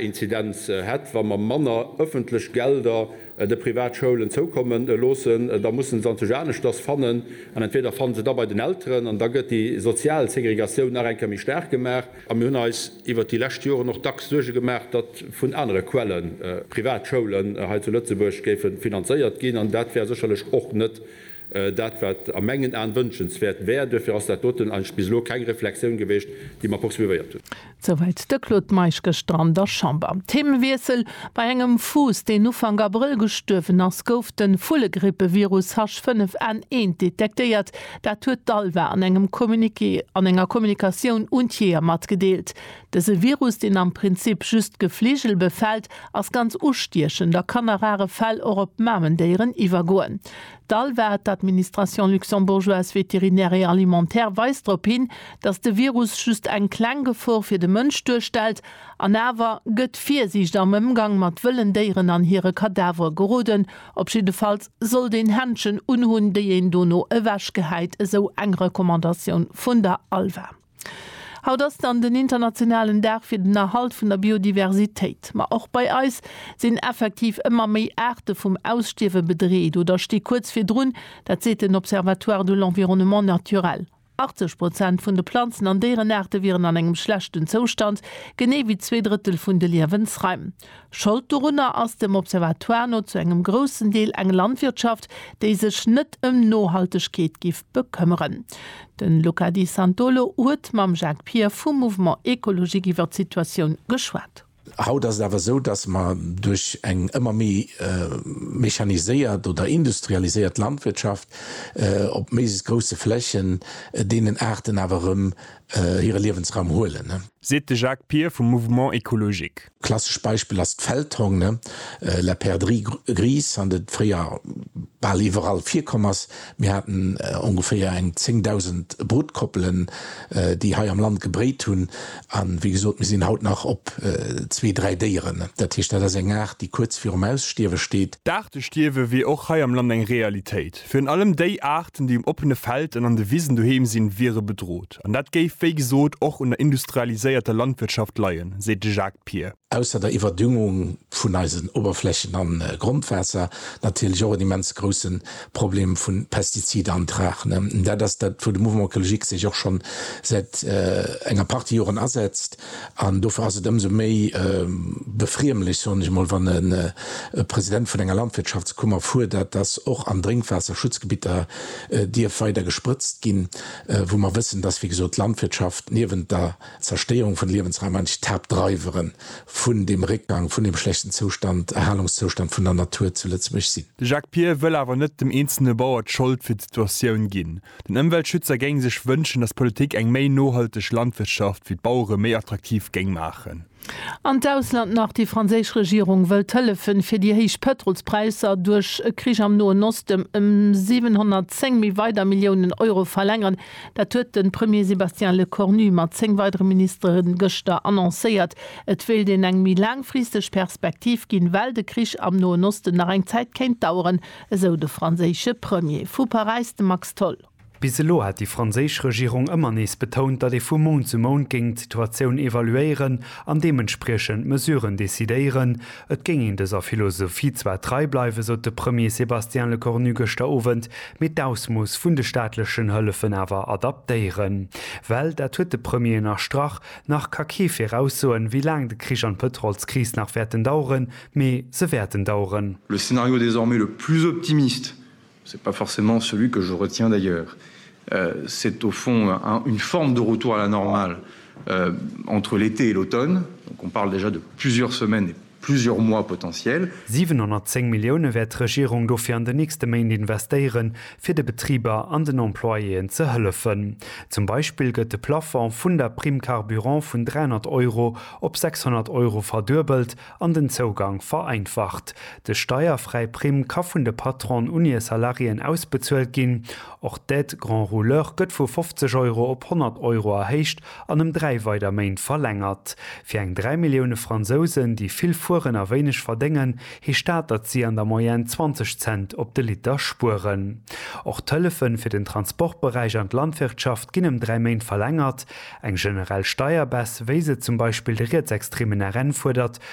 Inzidenz hätt, wa mer manner ëffentlech Gelder de Privatschoulen zoukomme loossen, da musse se natierlech aneschters fannen an entweder fanne se da bei den Elteren an da gëtt déi sozial Segregatioun nach eng Kéier méi staark gemaach. A mir hunn eis iwwert déi lescht Joren och dacks Suerge gemaach, datt vun anere Quelle Privatschoulen hei zu Lëtzebuerg géife finanzéiert ginn an dat wär sécherlech och net Dat, wat a mengen Aen wënschenswäert wär. Duerfir ass dat doten eigentlech bis elo keng Reflexioun geweecht, déi mer poursuivéiert hunn. Souwäit de Claude Meisch gëschter an der Chamber. Themewiessel, Bei engem Fuuss, deen Ufank Abrëll gestuerwen ass, gouf de Vullegrippevirus H5N1 detektéiert. Dat huet d'ALVA an engem Communiqué an enger Kommunikatioun un d'Jeeër matgedeelt. Dëse Virus, deen am Prinzip just d'Gefligel befält, ass ganz ustiechend a kann a rare Fäll och op Mamendéieren iwwergoen. D'ALVA, d'Administration luxembourgeoise vétérinaire et alimentaire, weist drop hin, datt de Virus just eng kleng Gefor fir de Mënsch duerstellt. An awer gëtt Virsiicht am Ëmgang mat wëllen Déieren an hire Kadavere geroden. Op jiddefalls sollt een Händschen unhunn, déi een dono ewechgehäit, esou eng Recommandatioun vun der ALVA. Haut ass dann den internationalen Dag fir den Erhalt vun der Biodiversitéit. Ma och bei eis sinn effektiv ëmmer méi Aarte vum Ausstierwe bedreet oder sti kuerz virdrun. Dat seet den Observatoire de l'environnement naturel. 80 Prozent vun de Planzen an Déierenaarte wieren an engem schlechten Zoustand, genee wéi zwee Drëttel vun de Liewensraim. Schold dorunner ass dem Observatoire no zu engem groussen Deel eng Landwirtschaft, déi sech net ëm Nohaltegkeet giff bekëmmeren. De Luca Di Santolo huet mam Jacques Pier vum Mouvement Ecologique iwwer d'Situatioun geschwat. Haut ass et awer esou, datt mer duerch eng ëmmer méi mechaniséiert oder industrialiséiert Landwirtschaft op méiglechst grousse Flächen deenen Aarten awer erëm hire Liewensraum huelen. Seet de Jacques Pier vum Mouvement Ecologique. Klassesch Beispill ass d'Feldhong, ne? La perdrix grise, an et fréier bal iwwerall virkomm ass. Mir haten ongeféier eng 10.000 Brutkoppelen, déi hei am Land gebréit hunn. A wéi gesot, mir sinn haut nach op zwee, dräi Déieren. Dat heescht, dat ass eng Aart, déi kuerz virum Ausstierwe steet. D'Aartestierwe wier och hei am Land eng Realitéit. Virun allem déi Aarten, déi um oppene Feld an an de Wisen doheem sinn, wiere bedrot. An dat géif, wéi gesot, och un der industrialiséierter Landwirtschaft leien, seet de Jacques Pier. Ausser der Iwwerdüngung vun eisen Oberflächen an Grondwaasser natierlech och en immens groussen Problem vun Pestiziden an Trachen. Dat ass dat wou de Mouvement Ecologique sech och schonn säit enger Partie Joren asetzt. An dofir ass et ëmsou méi befriemlech, soen ech emol, wann e President vun enger Landwirtschaftskummer fuerdert, dass och an Drénkwaasserschutzgebitter dierf weider gesprëtzt ginn, wou mer wëssen, dass, wéi gesot, d'Landwirtschaft niewent der Zerstéierung vun de Liewensraim eigentlech d'Haaptdreiwere vun deem Réckgang, vun deem schlechten Zoustand, Erhalungszoustand vun der Natur zu Lëtzebuerg sinn. De Jacques Pier wëll awer net dem eenzelne Bauer d'Schold fir d'Situatioun ginn. Den Ëmweltschützer géing sech wënschen, datt d'Politik eng méi nohalteg Landwirtschaft fir d'Bauere méi attraktiv géing maachen. An d'Ausland nach, Déi franséisch Regierung wëllt hëllefen, fir déi héich Pëtrolspräisser duerch e Krich am Noen Osten ëm 710 méi weider Milliounen Euro verlängeren. Dat huet de Premier Sébastien Lecornu mat zéng weidere Ministere gëschter annoncéiert. Et wéilt een eng méi laangfristeg Perspektiv ginn, well de Krich am Noen Osten nach eng Zäit kéint daueren. Esou de franséische Premier. Vu Paräis de Max Tholl. Bis elo hat déi franséisch Regierung ëmmer nees betount, datt ee vu Mount zu Mount géing d'Situatioun evaluéieren an deementspriechend Mesuren decidéieren. Et géing een dëser Philosophie zwar trei bleiwen, sot de Premier Sébastien Lecornu gëschter Owend, mee d'Ausmooss vun de staatlechen Hëllefen awer adaptéieren. Well, dat huet de Premier ënnerstrach, nach ka kee viraussoen, wéi laang de Krich an d'Pëtrolskris nach wäerten daueren. Mee se wäerten daueren. Le scénario désormais le plus optimiste, ce n'est pas forcément celui que je retiens d'ailleurs, c'est au fond une forme de retour à la normale entre l'été et l'automne, donc on parle déjà de plusieurs semaines et plusieurs mois potentiels. 710 Millioune wäert d'Regierung dofir an den nächste Méint investéieren, fir de Betriber an den Employéen ze hëllefen. Zum Beispill gëtt de Plafond vun der Prime carburant vun 300 Euro op 600 Euro verduebelt an den Zougang vereinfacht. De steierfräi Primm ka vun de Patronen un hir Salariéen ausbezuelt ginn. Och d'Aide grand rouleur gëtt vu 50 Euro op 100 Euro erhéicht an ëm dräi weider Méint verlängert. Fir eng dräi Millioune Fransousen, déi vill fueren a wéineg verdéngen, heescht dat, datt si an der Moyenne 20 Cent op de Liter spueren. Och d'Hëllefe fir den Transportberäich an d'Landwirtschaft ginn ëm dräi Méint verlängert. Eng generell Steierbess, wéi se zum Beispill de rietsextremen RN fuerdert,